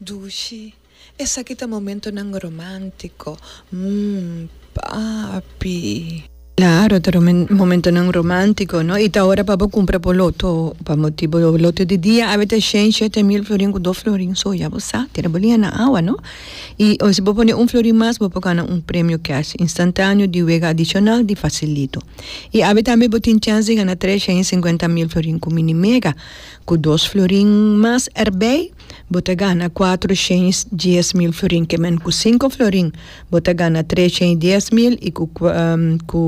Dushi, Esaki ta momentonan romántico, mm, papi. Claro, ta momentonan romántico, no? I ta ora pa bo cumpra bo loto, pa bo tin bo loto di dia, awe ta shen, shete mil florin cu dos florin, so ya bo sa, tira bo lia na awa, no? I si bo pone un florin mas, bo por cana un premio cash instantaneo di wega adicional di facilito. I awe tambe bo tin chance di gana tres shen i cincuenta mil florin cu mini mega, cu dos florin mas erbij. bo ta gana kuatro shens dies mil florin ke men ku sinku florin bo ta gana tres shens dies mil i ku ku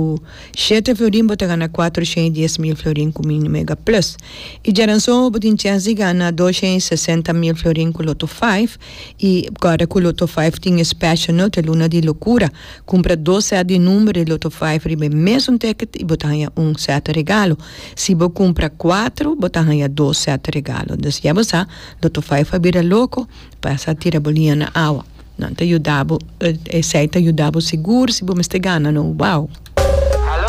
shete florin bo ta gana kuatro shens dies mil florin ku mini mega plus i djaranson bo tin chens di gana dos shens sesenta mil florin ku loto five i guarda ku loto five tin e special no te luna di lokura. Cumpra dos set di number di Lotto Five riba e mesun ticket y bo ta haya un set regalo. Si bo cumpra cuatro bo ta haya dos set regalo. Dus ya bo sa, Lotto Five a bira loco pa sa tira bo liña na awa. Nan ta yuda bo, esey ta yuda bo sigur si bo mester gana no. Wow!